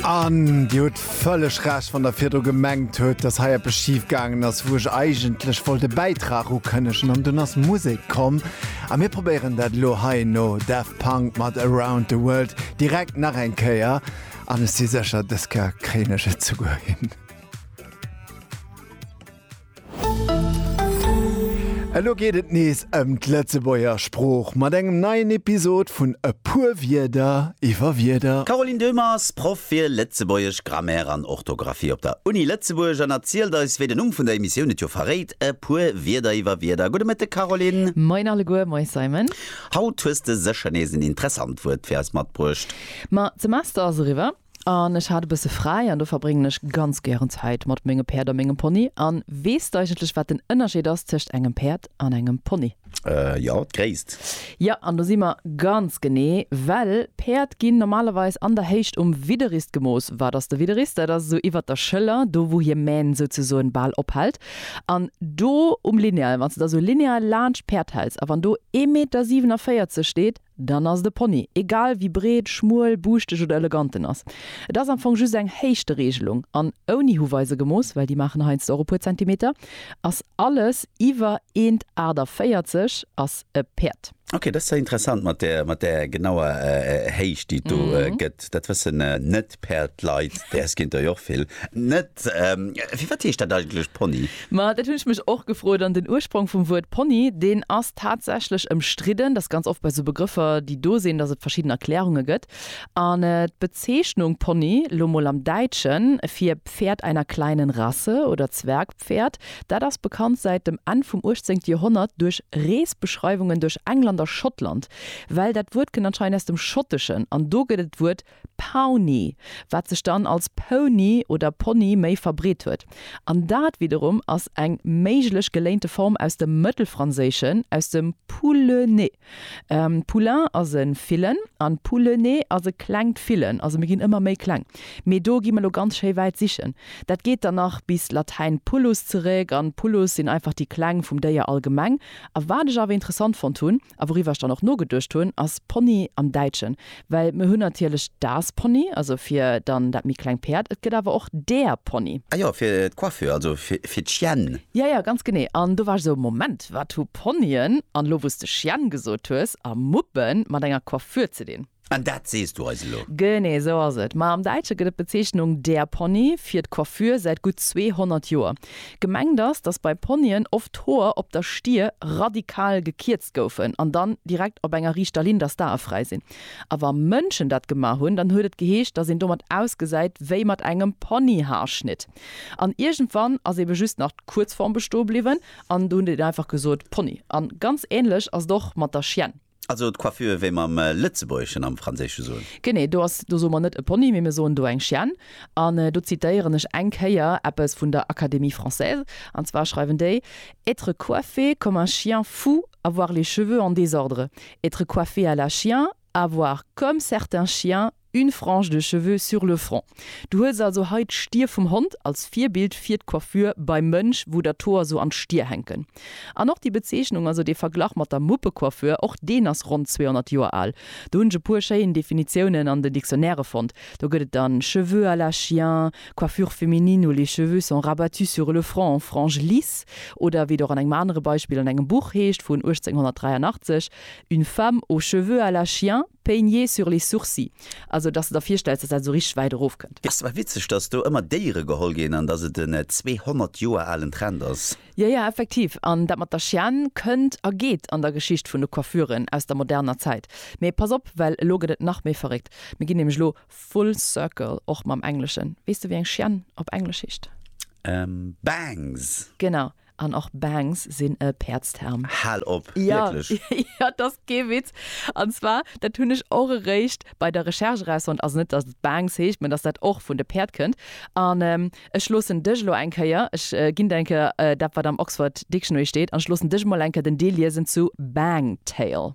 An Dir hutt vëlleg Recht, wann Der virdru gemengt hutt, dass hei eppes schif gaangen ass, wou ech eigentlech wollt e Bäitrag ukënnegen an dunn ass Musek komm. A mir probéieren dat elo hei no Daft Punk mat Around the World direkt nach eng Kéier. An ech si sécher, dës Kéier kréien ech et souguer hin. Elo geet et nees ëm d'Lëtzebuerger Sprooch mat engem neien Episod vun E puer Wierder iwwer Wierder. D'Caroline Döhmer ass Proff fir Lëtzebuergesch, Grammaire an Orthografie op der Uni Lëtzebuerg an erzielt eis, wéi den Numm vun der Emissioun et jo verréit, E puer Wierder iwwer Wierder. Gudde Mëtteg, Caroline. Moien alleguer. Moie, Simon. Haut hues de sécher nees en interessant Wuert fir eis matbruecht. Ma d'Semester ass eriwwer. An ech hat e bësse fräi an do verbréngen ech ganz gären Zäit mat menge Päerd a mengem Pony. An weess de eigentlech, wat den Ënnerscheed ass tëscht engem Päerd an engem Pony? Jo, d'Gréisst. Jo, an do si mer ganz genee, well Päerd ginn normalerweis an der Héicht um Widderrist gemooss. Wat ass de Widderrist? Dat ass esou iwwert der Schëller, do wou hir Mähn souzesoen bal ophält. An do um Lineal, wann s de da esou lineal laanscht d'Päerd häls a wann do ee Meter 47 steet, Dann ass et e Pony, egal wéi breet, schmuel, buuschteg oder elegant en ass. Et ass am Fong just eng Héichtereegelung, an ouni Huweise gemooss, well déi maachen heiansdo och e puer Zentimeter. Ass alles iwwer 1,48 ass e Päerd. Ok, dat ass interessant mat där genauer Héicht déi et do gëtt. Dat wëssen net D'Päerd leit, däers kinnt der jo och vill net. Firwat heescht dat eigentlech Pony? Ma dat hunn ech mech och gefrot. An den Ursprong vum Wuert Pony, deen ass tatsächlech ëmstridden. Dat ass ganz oft bei esou Begrëffer, déi do sinn, datt et verschidden Erklärunge gëtt. An d'Bezeechnung Pony, lo mol am Däitschen, fir Pferd einer kleinen Rasse oder Zwergpferd, dat ass bekannt säit dem Enn vum uechtzéngte Joerhonnert duerch Reesbeschreiwungen duerch England a Schottland. Well dat Wuert kënnt anscheinend aus dem Schotteschen an do gëtt et d'Wuert Pawnee, wat sech dann als Pony oder Ponni méi verbreet huet. An dat widderum ass eng méiglech geléinte Form aus dem Mëttelfranséischen, aus dem poulener. Poulain ass e Villen an poulener ass e klengt Villen, also mir ginn ëmmer méi kleng. Mee do gi mer elo ganz schéi wäit sichen. Dat geet dann nach bis Latäin pullus zeréck, an pullus sinn einfach déi Kleng vum Déier allgemeng. A wat ech awer interessant fonnt hunn, A wouriwwer ech dann och nogeduecht hunn, ass Pony am Däitschen. Well mir hunn natierlech das Pony, also fir dann dat méi kleng Päerd, et gëtt awer och der Pony. Ah jo, fir d'Coiffure, also fir d'Chienne. Jo, jo, ganz genee. An do war ech esou, Moment, wat hu Ponyen, an elo wou s de Chienne gesot hues, a Muppen mat enger Coiffure ze dinn? An dat sees du eis elo? Genee esou ass et. Ma am Däitsche gëtt et d'Bezeechnung der Pony fir d'Coiffure säit gutt 200 Joer. Gemengt ass, datt bei Ponyen oft d'Hoer op der Stier radikal gekierzt goufen an dann direkt op enger riichter Linn, datt d'Ae fräi sinn. A wa Mënschen dat gemaach hunn, dann huet et geheescht, datt een domat ausgesäit wéi mat engem Ponyhaarschnitt. An iergendwann ass eebe just nach d'Kuerzform bestoe bliwwen an do hunn déi dann einfach gesot Pony. A ganz änlech ass et och mat der Chienne. Also d'Coiffure wéi mer am Lëtzebuergeschen am Franséische soen? Genee, do ass, do soe mer net e Pony, mee mir soen do eng Chienne. An do zitéieren ech eng Kéier eppes vun der Académie française, an zwar schreiwen déi, Être coiffé comme un chien fou, avoir les cheveux en désordre. Être coiffé à la chien, avoir, comme certains chiens, Une frange de cheveux sur le front. Du hues also hei d'Stier vum Hond als Virbild fir d'Coiffure beim Mënsch, wou der d'Hoer sou an d'Stier hänken. An och déi Bezeechnung, also dee Verglach mat der Muppecoiffure, och deen ass ronn 200 Joer al. Do hunn ech e puer schéin Definitiounen an den Dictionnairë fonnt. Do gëtt et dann cheveux à la chien, coiffure féminine où les cheveux sont rabattus sur le front en franges lisses oder wéi et och an engem anere Beispill an engem Buch heescht vun 1883, Une femme aux cheveux à la chien. Peigné sur les sourcils, also dass de der virstells, dass dat esou richteg wäit erof kënnt. Ass awer witzeg, dass do ëmmer Déiere geholl ginn an dass et en 200 Joer alen Trend ass. Jo, jo, effektiv. An dat mat der Chienne kënnt a geet an der Geschicht vun de Coiffuren aus der moderner Zäit. Mee pass op, well elo gëtt et nach méi verréckt. Mir ginn nämlech elo full circle, och mam Engleschen. Weess de, wéi eng Chienne op Englesch heescht? Bangs! Genau. An och Bangs sinn e Päerdsterm. Hal op! Wierklech? Jo, jo, et ass kee Witz. An zwar, dat hunn ech och eréischt bei der Recherche erausfonnt, also net, datt et Bangs heescht, mä datt dat och vun de Päerd kënnt. An ech loossen dech elo eng Kéier, ech ginn der eng Kéier dat, wat am Oxford Dictionary steet, an ech loossen dech emol eng Kéier den Deel liesen zu Bang-tail.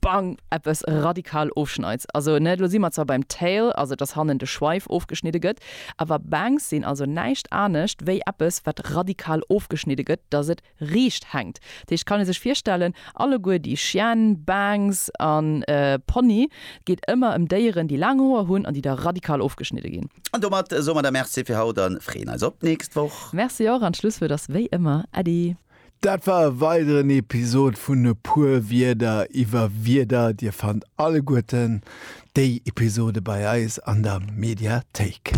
Bang! eppes radikal ofschneids. Also ne, lo si mer zwar beim Tail, also dass hannen de Schweif ofgeschnidde gëtt, awer Bangs sinn also näischt anescht wéi eppes wat radikal ofgeschnidde gëtt, dass et riicht hänkt. Dat heescht, kann ee sech virstellen, alleguer déi Chienne, Bangs a Pony, et geet ëmmer ëm Déieren déi laang Hoer hunn an déi da radikal ofgeschnidde ginn. An domat soe mer da Merci fir haut a freeën eis op d'nächst Woch. Merci och, an d'Schlusswuert ass wéi ëmmer Äddi. Dat war e weideren Episod vun E puer Wierder iwwer Wierder. Dir fannt alleguerten déi Episode bei eis an der Mediathéik.